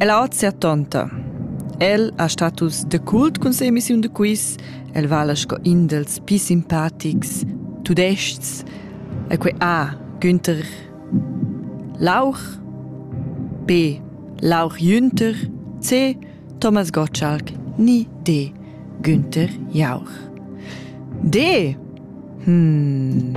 Ella hoz sia tonta. El ha status da cult cun sia emissiun da quiz. El vala sco in dals pii simpatics tudais-chs. E quai A. Günther Lauch B. Lauch Günther C. Thomas Gottschalk ni D. Günther Jauch. D. Hm.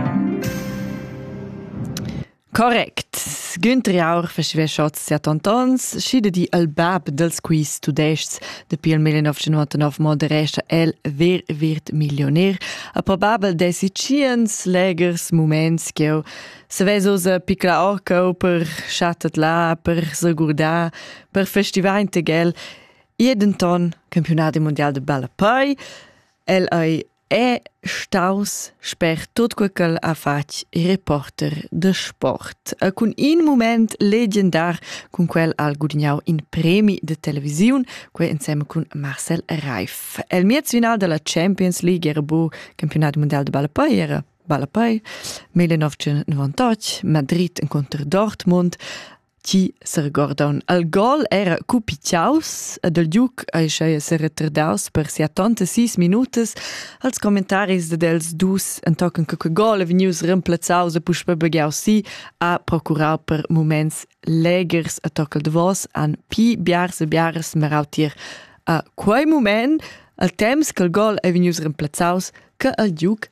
Correct. Güntri Aur fascheva shots a tontons, schi de di al bab dels quiz tudescs dapi il 1999 moderescha el Wer wird Millionär, a probabel dessi tschiens legers muments ch'eu savess usa picla orcau per chattet là, per segurdar, per festivar integel. E denton campionadi mondial de ballapei, el ei è staus sper tut quei ch'el ha fatg reporter de sport e cun in moment legendar cun quel ha gudignau in premi de televisiun quei insem cun Marcel Reif el miez final della Champions League era bu campionat mondial de ballapei era ballapei 1998 Madrid contro Dortmund chi seregordaun al gol era cupichaus ed il Duc ei schei seretardaus per sia tonta sis minutas als commentaris ded els dus entochen che quei gol è vegnius remplazzaus e puspei begiau si ha procurau per moments legers a toccal davos han pi biars e biaras merau tier a quei moment al temps che il gol ei vegnius remplazzaus che il Duc